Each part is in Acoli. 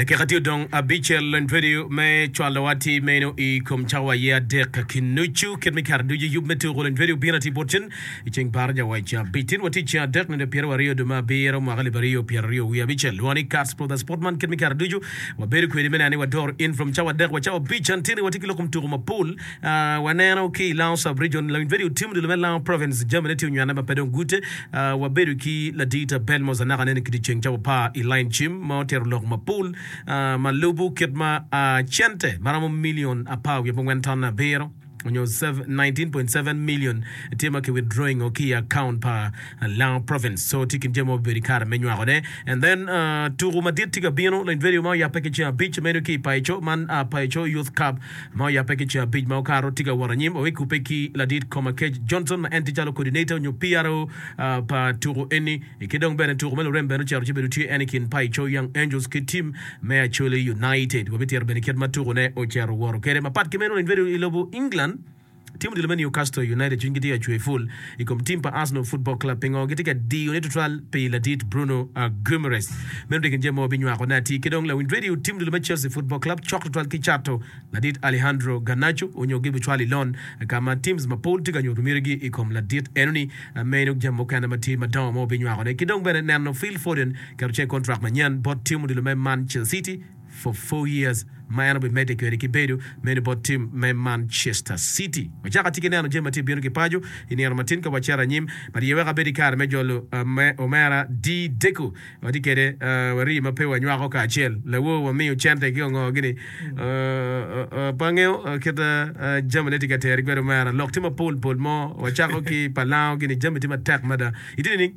Dakika tye odong abicel en tweri me cwalo wa ti meno i kom cawa aye adek ki nucu kit me kare ducu yub me tuku en tweri obino ati bot cen i ceng par jawac cabi tin wa ti ceng adek nende pyer wa riyo dume abiro mwaka liba riyo pyer riyo wi abicel lwa ni cars for the sport man kit me kare ducu wa bedo kwedi me nani wa door in from cawa adek wa cawa abic an tini wa ti ki lokum tuku mapol Waneno ki i Lounge Sub-Region, Lawiny Vedi otimo dilo me Lounge Province, jamine tye onywanne ma pe dong gute. Wabedo ki Ladii ta Belmos anaka anene ki dyeceng ca wapar i lain cim ma otero lok mapol ma lubu kit ma cente ma romo milion apar wiye pongwen ton abiro onyo 19.7 million tye ma ki withdrawing o ki i account pa Lounge Province. So tye kin jami ma wabedo i kare me nywako ne. And then tuku madit tye ka bino, Lawiny Vedi ma oyape ki ceng abic meno ki i Paeco man Paeco Youth Cup. ma oyape ki coo abic ma okato, tye ka wot anyim owe kubbe ki ladit Komakech Johnson ma en tye calo coordinator onyo PRO pa tuku eni i ki dong bene tuku me lurem bene ocito ci bedo tye en i kin Paico Young Angels ki team me Acholi United. Wabitito bene kit ma tuku ne ocito owoto kwede mapat ki meno in bedo i lobo England. Tim odilo me Newcastle United cwinygi tye ka cwer ful i kom tim pa Arsenal Football Club pingo gitye ka diyone tutwal pi ladit Bruno Guimaraes. Meno tye gin jami ma wabinywakone atir. Ki dong lawiny redio, tim odilo me Chelsea Football Club cok tutwal ki cato ladit Alejandro Garnacho onyo gibicwale i lon ka ma teams mapol tye ka nyuto mitigi i kom ladit enoni. Meno jami mukene ma tye madongo ma wabinywakone. Ki dong bene neno Phil Foden keto ce i contract manyen bot tim odilo me Mancel City. for four years ma en obimedde kwede ki bedo meno bot tim me Manchester City. Wacako atye ki neno jami ma tye ka bino ki paco i nino matin ka wacito anyim. Mariye weko abedo i kare me jolo me omera Di-Deco. Watye kwede wari ma pe wanywako kacel. Lawo wamiyo cente ki ongo gini. Pe angeyo kit jami ne tye ka teri kwede omera. Lok tye mapol pol mo. Wacako ki pa lango gini jami tye matek mada. Itye nining?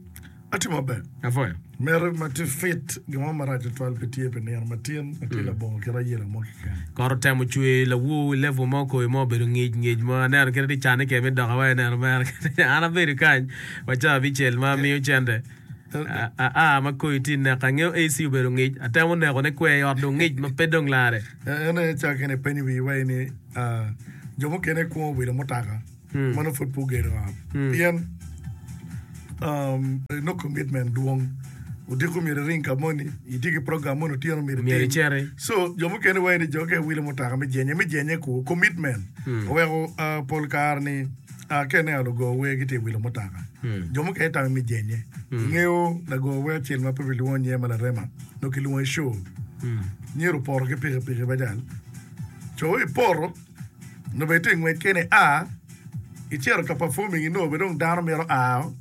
Atye maber. Apwoyo. Miti ma tye fit, gin mo marac tutwal pe tye pi nino ma tin ma tye labongo kit ayela mo keken. Kot otemo cwe lawu i level mo, koyo mo obedo ngic ngic mo. Aneno kit ma gicanne keken me doka wai neno mere keken. An abedo kany wa ca abicel ma amiyo cente. Aa ma koyo tye neka. Angeyo AC obedo ngic. Atemo neko ne kwer i ot dong ngic ma pe dong lare. En aye ca kene ipenyo wiyi wai ni, ah, jo mukene kwongo wilo mutaka. meno pud pe ogedo ot pien inongo commitment dwong. Odiko myero iring ka moni, itye ki program moni otyeno myero Myero itim. iciti. So jo mukene wai ni jo ka iwilo mutoka me jenye, me jenye kwo commitment. Oweko ah, pol kare ni ah, ka ineno lugo wer gitye iwilo mutoka. Jo mukene itamo me jenye. Ingeyo lago wer acel ma pe bilwongo nyinge ma larema, nongo kilwongo i show. Nyero opoto ki pikipiki bajal. Co ipoto. Nongo bene itye ngwec kene a icito ka performing inongo bene dong dano mito ao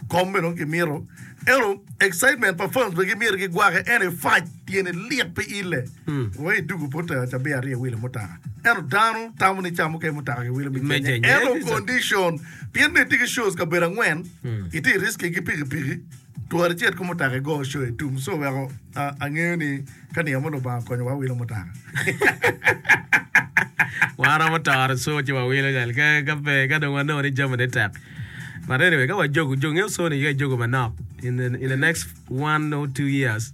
kom bene dong kimito eno excitement pa fans bene gimyero gigwake eno ifac tyene lit pe ile wa idugu pota cabi aryo iwilo mutaka eno dano tamo ni camo ke mutaka ki wilo me Me Kenya Kenya, eno yes, sir. condition pien ni itye ki shows kabedo angwen itye i riski ki pikipiki Twara icit ki mutoka igo coyo itum so weko angeyo ni ka niang mo Lubanga okonyowa wawilo mutoka. Wan waromo toro co ci wawilo cal ka ka pe ka dong wanongo ni jami ne tek. But anyway ka wajogo jo ngeyo co ni ka ijogo manok in the in the next one or two years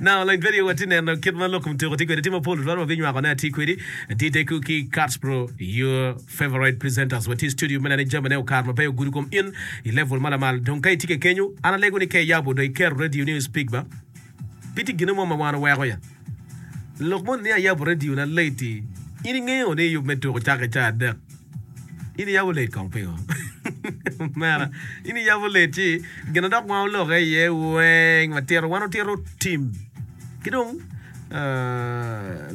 Naka dong pud aye watye ka neno kit ma lok mutyeko tye kwede. Tye mapol tutwal ma binywako ne atye kwedi. Atye tekwu ki Catsbro, your favorite presenters. Watye i studio me neno ni jamine okar maber ogudo kom in i level ma lamal. Dong ka itye keken nyo an alego ni ka iyabo dong iketo radio ni o speak ba. Pe tye gine mo ma wan oweko ya. Lok moni ni ayabo radio na late-ti in ingeyo ni yub me tuko cake ca adek. In iyabo late kong pingo? Omera, in iyabo late ci gin ma dok wango lokke iye weng watito wan otito tim. Ki dong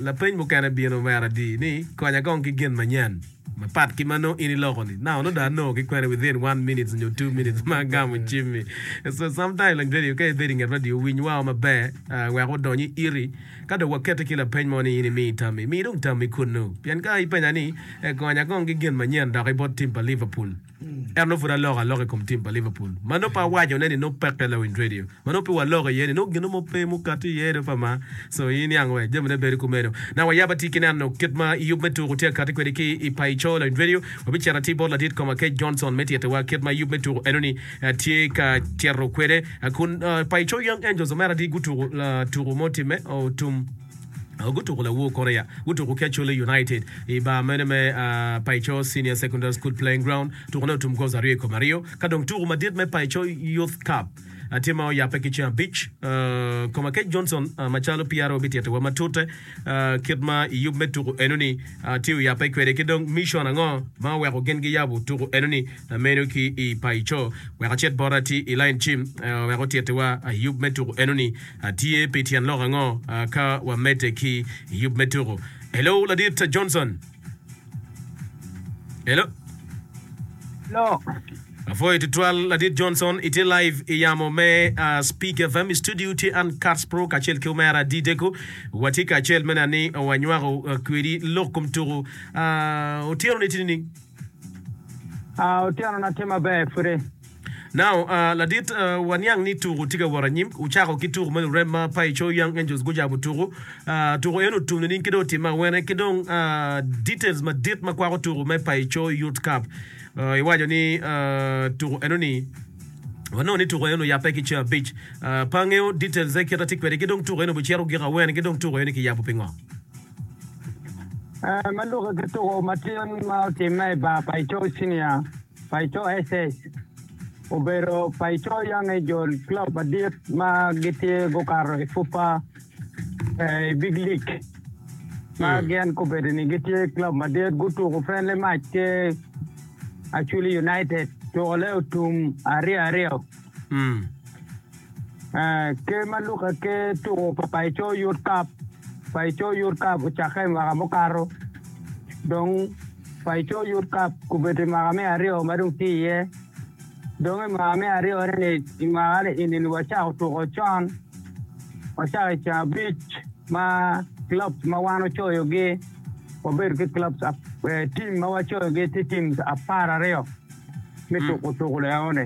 lapeny mukene bino omera di ni konya kong ki gin manyen mapat ki ma nongo in iloko ni. Now nongo do I know ki kwene within one minutes nyo two minutes ma agamo cimmi. So sometime lang radio ka ibedo inget radio winy wao maber wek odony i iti. Ka dong wakette ki lapeny mo ni in imi tammi, mi dong tammi kunnu. Pien ka ipenya ni, 'Egonyo agong ki gin manyen dok i bot tim pa Liverpool, ento nongo pud aloko aloka i kom tim pa Liverpool? Ma nongo pe awacone ni nongo pek pe lawinj redio. Ma nongo pe waloko iye ni nongo gin mo pe mukati iye do pa ma. So, i niang wek jamine bedo kumeno. Nang wayab atir ki neno kit ma yub me tuku tye ka kati kwede ki i paco lawinj redio, wabicito atir bot Ladit Koma Kec Johnson me tittiwa kit ma yub me tuku eno-ni Atye ka cito kwede kun pa i co Young Angels omera di gutuku tuku mo timme otum gutuku lawor Korea gutuku ki Acholi United i bar mene me Paico Senior Secondary School Playing Ground tuku ne otum goals aryo i kom aryo ka dong tuku madit me Paico Youth Cup tye ma oyape ki ceng abic Komakec Johnson macalo PRO bitito wa matute kit ma i yub me tuku enoni tye oyape kwede ki dong mission ango ma oweko gin giyabo tuku enoni Meno ki i payi co wek acit bot ati i lain cim wek otitiwa. Yub me tuku enoni tye pi tyen lok ango ka wamedde ki yub me tuku? Hello Ladit Johnson. Hello. Hello. Apwoyo tutwal Ladit Johnson. Itye live i yamo me Speak FM. I studio tye an Kats Pro kacel ki omera Dideko. Watye kacel me neno ni wanywako kwedi lok kom tuku otyeno niting nining? A Otyenona tye maber pwode. Now, uh, ladit, uh, waniang ni tuku tye ka wot anyim. Wucako ki tuku me lurem ma pa i Cho Young Angels gucabo tuku. Uh, tuku eno otum nining ki dong otimme awene ki dong uh, details madit ma kwako tuku me pa i Cho Youth Cup. Uh, iwaco ni uh, tuku eno ni wanongo ni tuku eno oyape ki ceng abic. Uh, pe angeo details-e kit atye kwede ki dong tuku eno bicito giko awene ki dong tuku eno kiyabo pingo. Ee, ma lukke ki tuko matino ma otimme i bar pa Ico Cinia pa Ico SS, obedo pa Ico Yange Jol club madit ma gitye gukato i Super ee, i Big League ma hmm. gin gubedo ni gitye club madit gutuko friendly match ki Achuli United tuko le otum aryo aryo. Hmm. Ker ma Luka Ker tuko pa Paco yot kap. Paco yot kap ocakke i mwaka mukato. Dong Paco yot kap obedo i mwaka me aryo ma dong tye iye. Dong i mwaka me aryo ni i mwaka ni eni ni wacako tuko con. Wacako i ceng abic ma clubs ma wan wacoyogi wabedo ki clubs tim ma wacoyogi tye teams apar aryo me tuko tuko eno ni.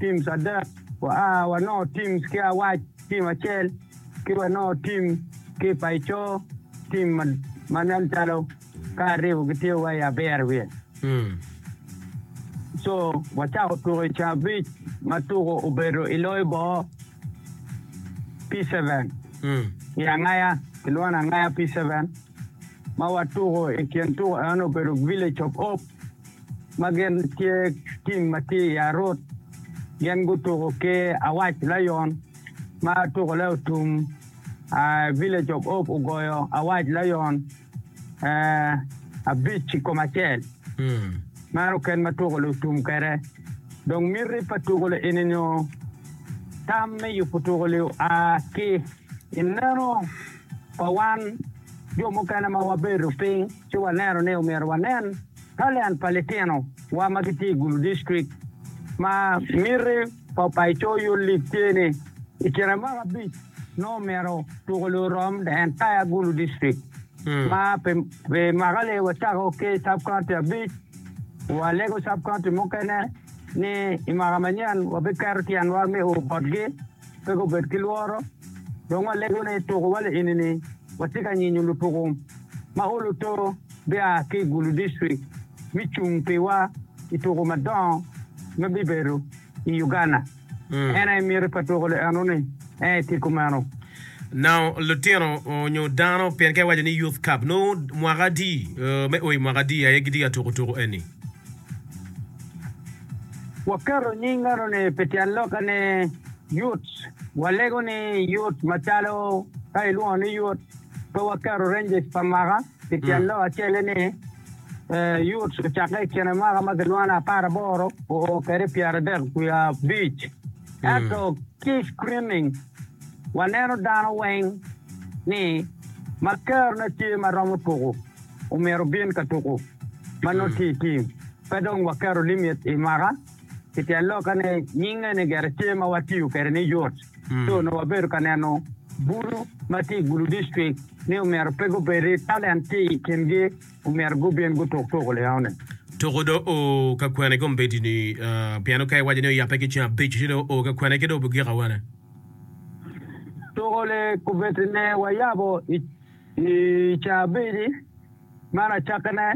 teams adek, wa wanongo teams ki Awac, team acel, ki wanongo team ki Paico, team ma nen calo ka aribbo gitye wa i abiro wiye. Co wacako tuko i cabic ma tuko obedo i loyo boo P-seven i Angaya, kilwongo ni Angaya P-seven, ma watuko i kin tuko eno obedo Village of Hope. ma gin tye tim ma tye i Arut, gin gutuko ki Awac Lion ma tukone otum, Village of Hope ogoyo Awac Lion abic i kom acel. Meno ken ma tukone otum kwede. Dong miti pa tukone eni nyo tam me yubo tukone oa ki i neno pa wan jo mukene ma wabedo piny ci waneno ni omyero wanen Ka lend pa litino wa ma gitye i Gulu District ma miti pa Paco Youth League tye ni i kine mwaka abic nongo omyero tuko lu rom the entire Gulu District ma pi pi mwaka ni wa cako ki Sub County abic wa lego Sub County mukene ni i mwaka manyen wa bi keto tyen wa me o botgi. Pe gubed ki lworo, dong walego ni tuku wa lienini watye ka nyinyo lutuku ma oluto bia ki i Gulu District mi cung pi wa i tuku madongo ma bibedo i Uganda. En aye miti pa tuku li enoni, en aye tye kumeno. Nao litino nyo dano pien ka iwaco ni Youth Cup nongo mwaka adi me o i mwaka adi aye gitye ka tuku tuku eni? Waketo nying eno-ni pi tyen lokke ni Yut. Walego ni Yut macalo ka ilwongo ni Yut, pe waketo ranges pa mwaka pi tyen lok acel-le ni Yut ocakke i kine mwaka ma kilwongo ni apar aboro oo kede pyeradek wiye abic. Ento ki i screening, waneno dano weng ni ma kerone tye ma romo tuku omyero obin ka tuku. ma nongo tye i tim, pe dong waketo limit i mwaka. Pi tyen lokke ni nying eni gire tye ma watiyo kwede ni yot, ci onongo wabedo ka neno bulu ma tye i Gulu District ni omyero pe gubed ni talent tye i kingi, omyero gubin gutuk tuko liaone. Tuko dong oo ka kwene kombeddi-ni? Pien-ni ka iwaco ni oyabe ki ceng abic, ci dong oo ka kwene ki dong obigik awene? Tuko-ni kombeddi-ni wayabo i ceng abic-ci. Man acakkine,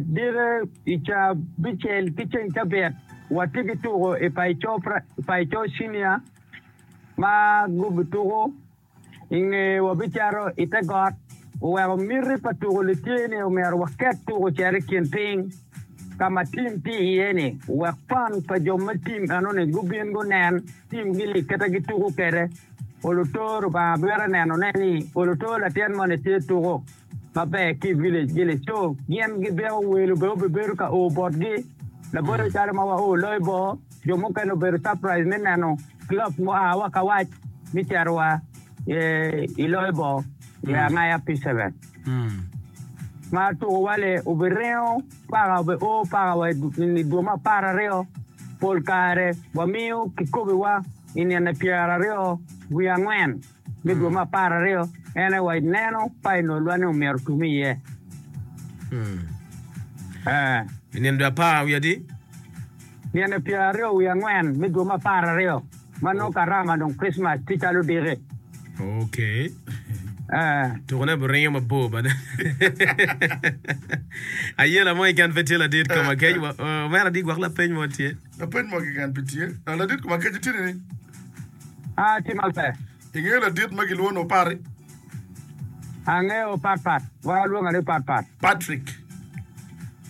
dite i cabicel ki ceng cabit watye ki tuko i Paco Cinia ma gubituko i nge wabicato i te got oweko miti pa tuko ni tye ni omyero waket tuko cito i kin piny ka ma tim tye iye ni wek fan pa jo me tim eno ni gubin gunen. Tim gini kite gituko kede. Olutor Lubanga bwira neno ne ni olutor latin moni tye tuko maber ki village village co gin gibiko welo bene obibedo ka o botgi laboyo calo ma wa o loyo bo jo mukene obedo surprise me neno club mua wa kawac me cito wa i loyo bo i angaya P7 ma tuko wale obiringo Paka obe o pakawa i dwoma apar aryo, pol kare wamiyo kikobiwa i nine pyera aryo wiye angwen me dwoma apar aryo, en aye wa ineno painolwa ni omyero otum iye. I nine dwe apar wiye adi? Nino pyeraryo wiye angwen me dwe me apar aryo ma nongo karama dong Krictmac tye calo odiki. Ok. Tuko ne biringo mabor bene. Ayela mo keken pe tye ladit kom akec wa. Omera di gwok lapeny mo tye. Lapeny mo keken pe tye. Ladit kom akec itye nini? Atye maber. I nge ladit ma gilwongo ni Opari. Angeyo opatpat. Wa lwonga ni opatpat. Patrick.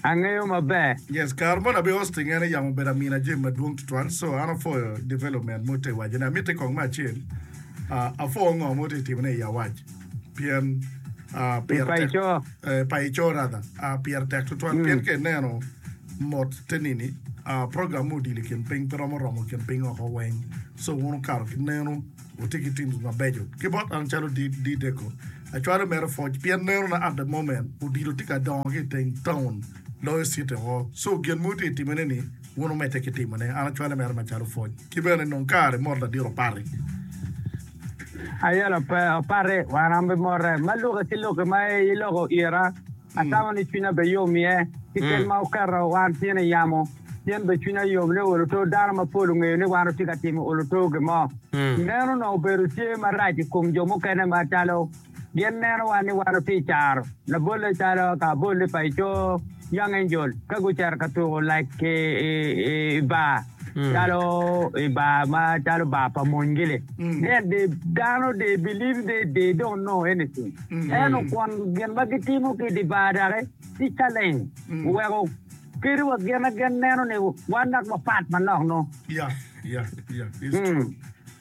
Angeyo maber. Yes, kare moni abe hosting en yam obedo amina gym madwong tutwal so an apwoyo development mo te wacce ne amitte kong me acel, uh, apwo ngo mo te timone i awac. Pien pire tek tutwal. Pien ka ineno mot te nini, program me odilo i kin piny pe romo romo kin piny woko weng. Co wun wukato ki nenu, wutye ki teams mabeco. Ki bot an calo D-Deco, acwalo mere pwoc pien nenona at the moment odilo tye ka dongo ki i teng taun loyo city woko. Co gin ma wutye ka timone ni, wun wumedde ki timone. An acwale mere macalo pwoc. Ki bene nong kare mot ladiro pati. Ayelo pe opati wan an bimote ma luki ki luki ma iloko ira atamo ni cwinya be yom iye ki kel ma wuketo wan tyen i yamo pien be cwinya yom ni olo to dano mapol ongeyo ni wan wutye ka timo olo to gimo meno onongo obedo tye marac i kom jo mukene macalo Gin nenowa ni wan otye caro labolle calo ka abolli pa i coo young angel ka gucito ka tuko like i bar calo i bar ma calo bar pa mony gili then they dano they believe they they don't know anything eno kwon gin ma gitimo ki di bar daki tye challenge weko kadi wa gin na gin neno ni wan dok wapat manok noo. Yeah, yeah, yeah. It's true.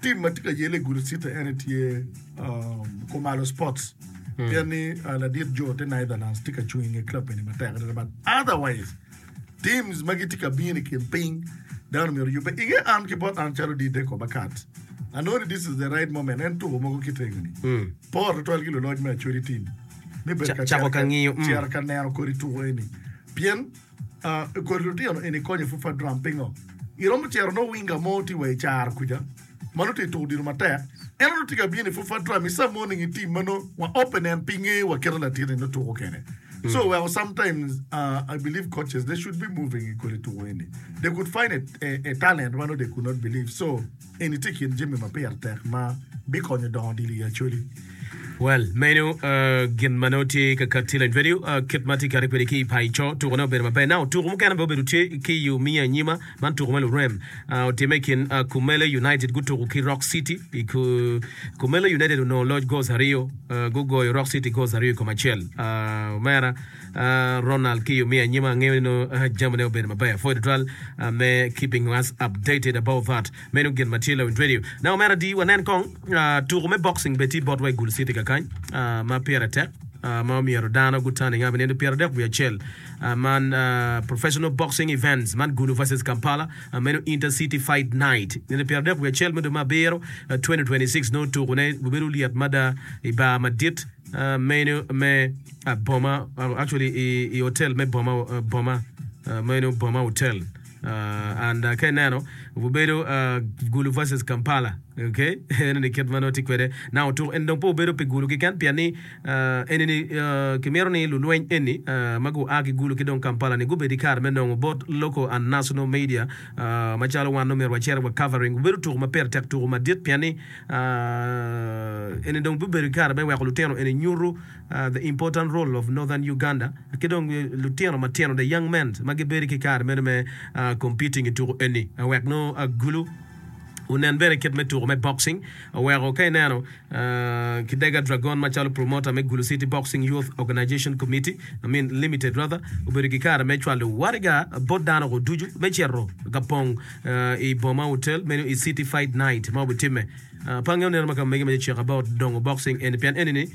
Tim ma tye ka yelle i gudi cita ene tye Khumalo Sports pien ni ladit jo te Netherlands tye ka cung i nge club eni matek adada but otherwise teams ma gitye ka bino i kin piny dano myero yubbe i nge an ki bot an calo dide koba kat anoni this is the right moment en tuko mogo kitenge ni por tutwal ki luloc me achodi tim me bedo ka cero ka neno kodi tuko eni pien I kodi lutino eni konyo Fufa Drum pingo? Iromo cero nongo winga mo tye wa i caro kuca ma nongo tye ka tuko odilo matek. En onongo tye ka bino i Fufa Drum i some morning i team ma nongo wa open and pinge wa keto latin ni nongo tuko kene. So weko sometimes I believe coaches they should be moving i kodi tuko eni. They could find a, a, a talent ma nongo they could not believe. So. Eni tye i kin jami ma pire tek ma bikonyo dongo odilo i Acholi. Well, meno gin ma nongo tye ka katti lony kwede. Kit ma atye kati kwede ki i paco, tuko-ne obedo maber. Now, tuko mukene bene obedo tye ki i omiyo anyima, man tuko me lurem. Otimme i kin Kumele United gutuko ki Rock City. Kumele United onongo loc goals aryo, gugoyo Rock City goals aryo i kom acel. Omera. Ronald ki yo me anyima angeyo ni nongo jami ne obedo maber pwod tutwal me keeping us updated about that meno gin ma tye lowind radio ne omera adi wanen kong tuku me boxing bene tye bot wa i gul city kakany ma pire tek ma omyero dano gutane nga binindo pyera dek wiye acel man professional boxing events man gulu versus kampala meno inter city fight night nindo pyera dek wiye acel me dwe ma abiro 2026 nongo tuku ne gubedo lyet mada i bar madit meno me boma actually i hotel me boma boma meno boma hotel and ka ineno obedo gulu versus kampala okay ene ni kit mano ti kwede na otuk en dong po obedo pi gulu kiken pien ni eni ni kimito ni lulweny eni ma gua ki gulu ki dong kampala ni gubedi kare me nongo both local and national media macalo wan omyero wacere wa covering obedo tuku ma pire tek tuku madit pien ni eni dong bibedo kare me weko lutino eni nyutu The Important Role of Northern Uganda ki dong lutino matino the young men ma gibedo ki kare meno me competing i tuko eni wek nongo agulu onen bene kit me tuko me boxing oweko ka ineno Kidega Dragon macalo promoter me Gulu City Boxing Youth Organization Committee I mean Limited rather obedo ki kare me cwalo waraga bot dano go ducu me cito ka pong i boma hotel meno i City Fight Night ma obitimme pange oneno ma ka mege me check about dongo boxing eni pien eni ni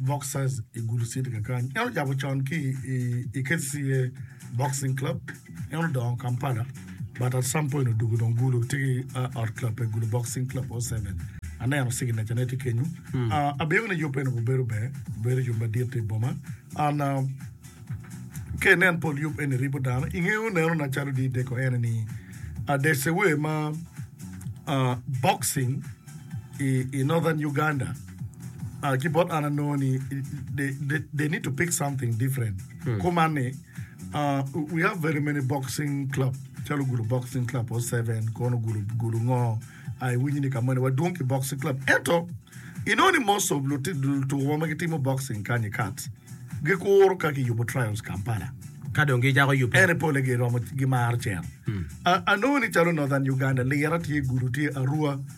Boxers i Gulu City kakany. En ojabo con ki i, i KCCA Boxing Club. En odongo Kampala, but at some point odugu dong Gulu tye ki uh, ot club pe Gulu Boxing Club 07. Aneno signature ne tye kenyu. Uh, abedo ni yub eno obedo ber, obedo yub madit i boma. An uh, ke nen pol yub eni ribo dano ingeyo neno na calo di deko ene ni uh, there's a way ma uh, boxing i, i northern Uganda Ah, ki bot an anongo ni they, they, they need to pick something different. Hmm. Kuman ni uh, we have very many boxing club. Calo gulu boxing club o seven kono gulu gulu ngo. Ai winyi ni kamani wadwong ki boxing club. Eto ino ni most of lutuwa ma gitimo boxing kanyi kat gikuro ka kiyubo trials Kampala. Ka dong gicako yupe. Ene pole giromo gimaro cen. Hmm. Anongo ni calo Northern Uganda lira tye gulu tye Arua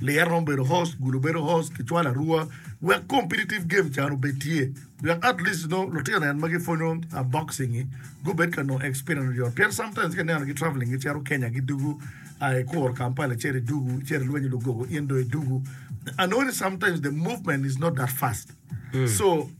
Ler romo bedo host, gulu bedo host ki cwalo arua wek competitive game can obed tye wek at least nongo lutino en ma gipwonyo boxing ngi gubed ka nongo experience mayot pien sometimes ka ineno gi travelling gi cito Kenya gi dugu aa i kuro Kampala icito i dugu icito ilwenyo Lugogo in dong i dugu I know ni sometimes the movement is not that fast Co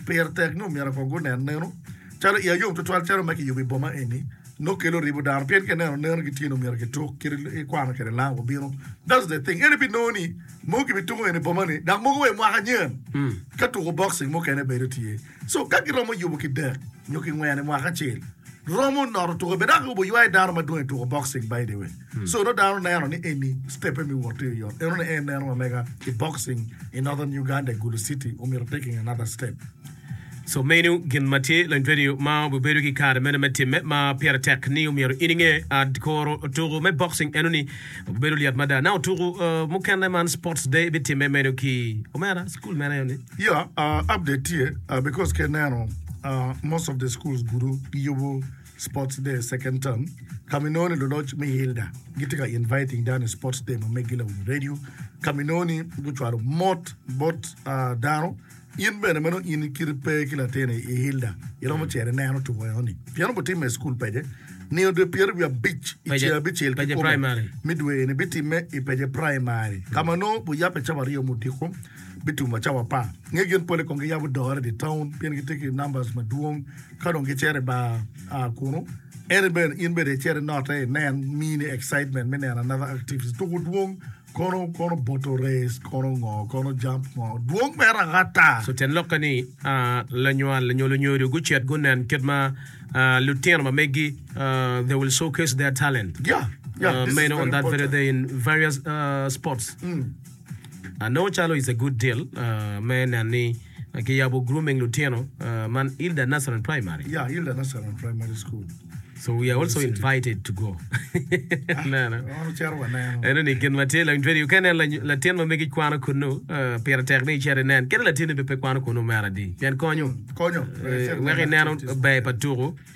pire tek ni omyero kong gunen neno calo iye yom tutwal calo ma kiyubo i boma eni nongo kelo ribo dano pien ka ineno neno gitye ni omyero gituk kadi ikwano kwede langa obino that's the thing ene binongo ni mogo gibituko eni boma ni dok mogo wa i mwaka nyen ka tuko boxing mukene bedo tye so ka giromo yubo ki dek nyo ki ngwen i mwaka acel romo noto tuko bene dok oyubo ywai dano madwong i tuko boxing by the way Codo dano neno ni eni stepe me wot iyo yot. Enone en neno mamega i boxing i Northern Uganda i Gulu City omito taking another step. So meno gin ma tye lony kwedi ma obibedo ki kare mene me timme ma pire tek ni omyero in inge. Ad koro tuku me boxing enoni obibedo lyet mada. Now tuku mukene man sports day ibitimme meno ki omera school mene enoni? Yeah, update tye because ki ineno most of the schools gudu giyubo Sports Day Second Term, ka ma inongo ni luloc me ILDA gitye ka inviting dano i Sports Day ma meggi Lawiny Radio, ka ma inongo ni gucwalo mot bot ah, dano, in bene ma nongo in i kiti pe ki latin i i ILDA, iromo cito ineno tuko eno-ni. Pien onongo timme i cukul pece, nino dwe pyeri wiye abic i Pece- ceng abicel ki Pece kome Primary. me dwe-ni bitimme i Pece Primary, ka ma nongo guyabbe cawa aryo me odiko, bitumo cawa apar. Nge gin pole kong giyabo dore i dye taun pien gitye ki numbers madwong, Ka dong gicito i bar kunu, en bene in bene icit inote inen, miyi ni excitement me neno another activities tuku dwong kono kono boto race kono ngo kono jump ngo dwong mere agata. So tyen lokke ni lanywal nyo lunyodo gucit gunen kit ma lutino ma megi they will showcase their talent Yeah, yeah, this is meno on very that very important. day in various sports. Anongo calo it's a good deal me neno ni kiyabo grooming lutino man Ilda Nazarene Primary. Yeah, Ilda Nazarene Primary School. So we are also invited to go. Nana. Ono cero wa neno. Eno ni gin matye lang jweri ka nen latin ma megi kwano kunu pira tek ni chere nen. Kene latin ni be pe kwano kunu mera di. Pien konyo. Konyo. Wek ineno ber pa tuku.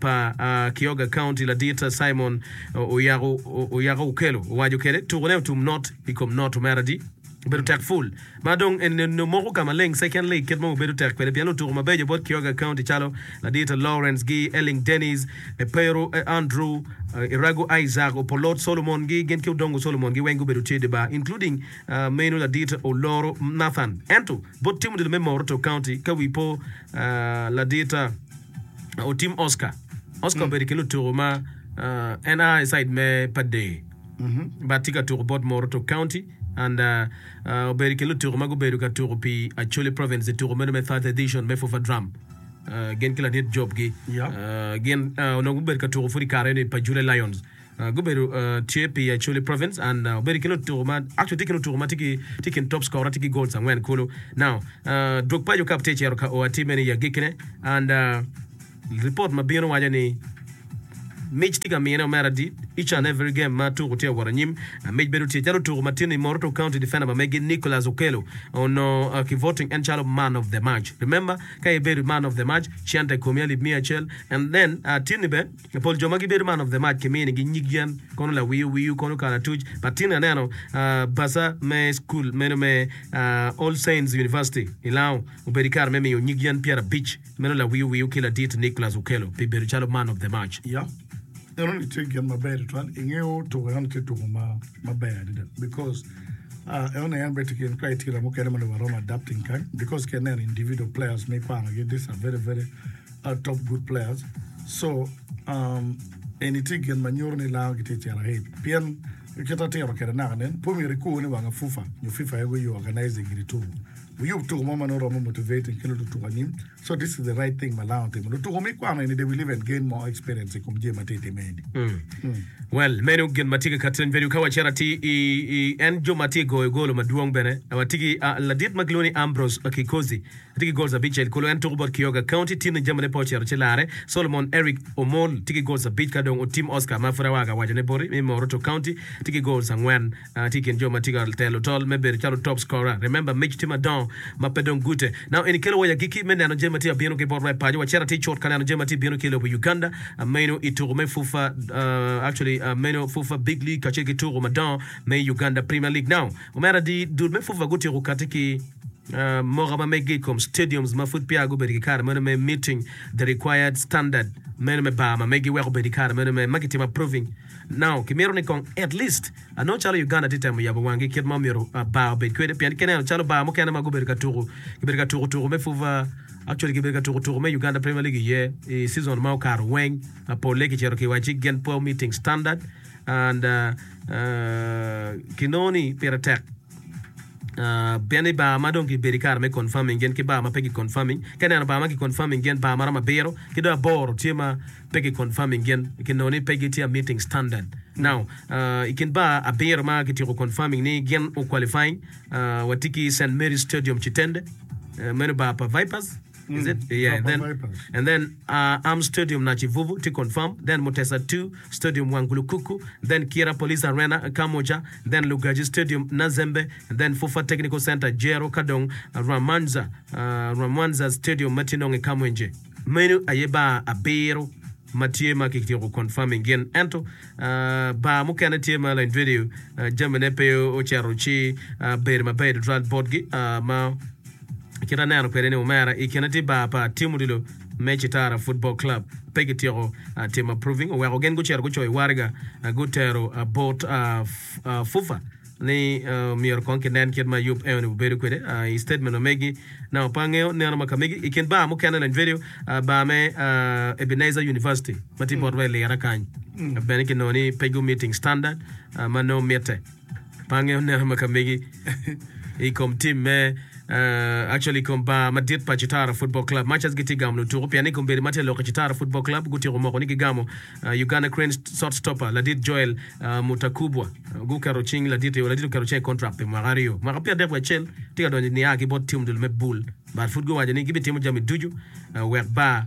pa Kioga County ladit Simon Oyako Okelo owaco kede tukune otum not i kom not Omeradi obedo tek full ma dong en nongo moko ka maleng second league kit ma wabedo tek kwede pien lutuku mabeco bot Kioga County calo ladit Lawrence gi Elling Dennis, Epero Andrew, Iragu Isaac, Opolot Solomon gi gin ki Odongo Solomon gi weng gubedo tye idi bar including meno ladit Oloro Nathan ento bot team odilo me Moroto County ka wi po ladit. Otim Oscar. Oscar obedo ki lutuku ma uh, en a i side me Padee. But tye ka tuku bot Moroto County and uh, uh, obedo ki lutuku ma gubedo ka tuku pi Acholi Province i tuku meno me third edition me Fufa Drum. Uh, gin ki ladit Job gi. Yep. Uh, gin uh, onongo gubedo ka tuku pud i kare eno i Pajule Lions. Gubedo tye pi Acholi Province and obedo ki lutuku ma actually tye ki lutuku ma tye ki kin top scorer tye ki goals angwen kulu. Now Dwog Paco Cup tye cito ka o atir meno i agikkine and report ma bino waco ni mic tye ka mine o mere adit each and every game ma tuku tye wot anyim. Mic bedo tye calo lutuku ma tinni Moroto County defender ma megi Nicholas Okello onongo ki voting en calo man of the match. Remember ka ibedo man of the match cente komi alip miya acel and then tinni bene I pol jo ma gibedo man of the match kiminigi nyig yen kono lawiyo wiyo kono kalatuc pa tin aneno pasa me school meno me All Saints University i Lango obedo ikare me miyo nyig yen pyera abic meno lawiyo wiyo ki ladit Nicholas Okello pi bedo calo man of the match. Ya enoni itye gin maber tutwal ingeyo tuko enoni tye tuko ma maber adada because uh, enoni en beti gin criteria mukene ma lobo aromo adapting kany because ki neno individual players mi kwanogi this are very very are top good players so um, eni tye gin ma nyuto ni Lao gitye cito ahit pien kit atiro kede naka nen pe omyero ikur ni wanga FUFA nyo FIFA aye guyo organizing gini tuku wuyub tuku mo ma nongo romo motivating ki lututuku anyim so this is the right thing ma Lao otimo lutuku me kwano eni they will even gain more experience i kom jami ma tye time eni. Hmm. Well, meno gin ma tye ki Catherine Bedu. Ka wacito ati i, i en jo ma tye goyo golo madwong bene, watye ki ah, ladit ma gilwongo ni Ambrose Akikozi. tye ki gol abic cel kulu. En tuku bot Kioga County. Timne jamine pe ocito ci larre. Solomon Eric Omol tye ki gol abic ka dong otim Oscar ma pud awaka ka wacone boti me Moroto County tye ki gol angwen. Tye i kin jo ma tye ka telo tol me bedo calo top scorer. Remember mic tye madongo ma pe dong gute. Now eni kelo wai agikki me neno jami ma tye ka bino ki bot rap paco. Wacit atir cut ka neno jami ma tye ka bino ki i lobo Uganda meno i tuku me FUFA actually meno FUFA Big League kacel ki tuku madongo me Uganda Premier League. Now omera dii dul me FUFA gutyeko kati ki. Moka ma meggi i kom stadiums ma pud peya gubedo ki kare meno me meeting the required standard meno me bar ma meggi weko bedo i kare meno me ma kitimo approving now. Kimito ni kong at least anongo calo Uganda tye temo yabo wanggi kit ma omyero bar obed kwede pien ka ineno calo bar mukene ma gubedo ka tuku kibedo ka tuku tuku me fuva actually kibedo ka tuku tuku me Uganda Premier League iye i season ma okato weng polle kicito ki wa ci gen po meeting standard and kinongo ni pire tek. Pien ni bar ma dong gibedo i kare me confirming gin ki bar ma pe ki confirming, ka ineno bar ma ki confirming gin bar maromo abiro ki dong aboro tye ma pe ki confirming gin ki nongo ni pe gitye a meeting standard. Now, i kin bar abiro ma ki tyeko confirming ni gin o qualifying, watye ki St Mary's Stadium Kitende, meno bar pa Vipers, Is it? Mm, Yeah, and Papa then Vipers. and then uh, Arm Stadium Nachivuvu to confirm, then Mutesa 2 Stadium Wangulukuku, then Kira Police Arena Kamwokya, then Lugaji Stadium Nazembe, and then Fufa Technical Center Jero ka dong Rwamanza uh, Rwamwanza Stadium ma tye nongo i Kamwenje. Meno aye bar abiro ma tye ma kityeko confirming gin ento uh, bar mukene tye ma lain video uh, jamine pe ocito ci uh, bedo maber tutwal botgi uh, ma Kit aneno kwede ni omera i kine ti bar pa Team Odilo me Citara Football Club pe ki tyeko timo approving oweko gin gucito gucoyo wariga gutero bot FUFA ni myero kong ki nen kit ma yub eo ni bubedo kwede i statement ma megi na wa pe angeyo neno ma kamegi i kin bar mukene lany video bar me Ebenezer University ma ti bot wa i Lira kany bene ki nongo ni pe gu meeting standard ma nongo mitte. Pange oneno ma kamegi i kom tim me uh, actually i kom bar madit pa Chitara Football Club. Machas gitye gamo lutuko pien ni kombeddi ma tye lok i Chitara Football Club gutyeko moko ni gigamo uh, Uganda Cranes shot stopper ladit Joel uh, Mutakubwa. Uh, guketo cing ladit yo ladit oketo cing contract pi mwaka aryo. Mwaka pyerdek wiye acel tye ka donyo nia ki bot tim dul me Bull but pud guwaco ni gibitimo jami ducu uh, wek bar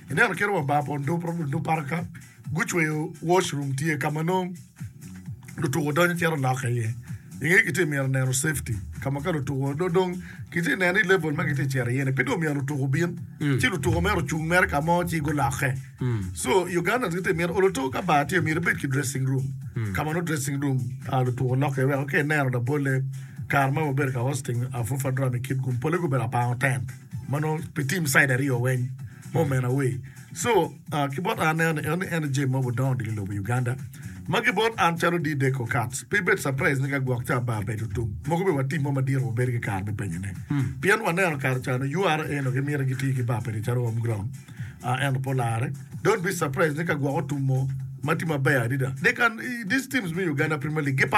Ineno kit wa bar pa Onduparadu ka gucweyo wash room tye ka ma nongo lutuko donyo cito lokke iye. I ngeye kitye myero neno safety ka ma ka lutuko do dong kitye neno ni level ma kitye cito iye ni pe dong myero lutuko obin ci lutuko mere ocung mere ka mo ci gulokke. So Ugandans gitye myero oluto ka bar tye myero ibed ki dressing room ka ma nongo dressing room ah, lutuko lokke iye weko ka ineno labolle kare ma wabedo ka hosting ah, Fufa Drum i Kitgum polle gubedo abang oten. ma nongo pe tim caid aryo weng ma omena awe so ki bot an aneno ni en aye jami ma odongo diki lobo Uganda ma ki bot an calo di deko kat pe bed surprise ni ka gwok ca bar bedo tum mogo bene wa tim mo madit wa bedo ki kare me penyo ne pien wa neno kare ca ni ura en nongo ki miti ki ti ki bar pene calo home ground ah ento pe olare don't be surprise ni ka gwok otum mo ma tim maber adida they can these teams me Uganda premier league gi par.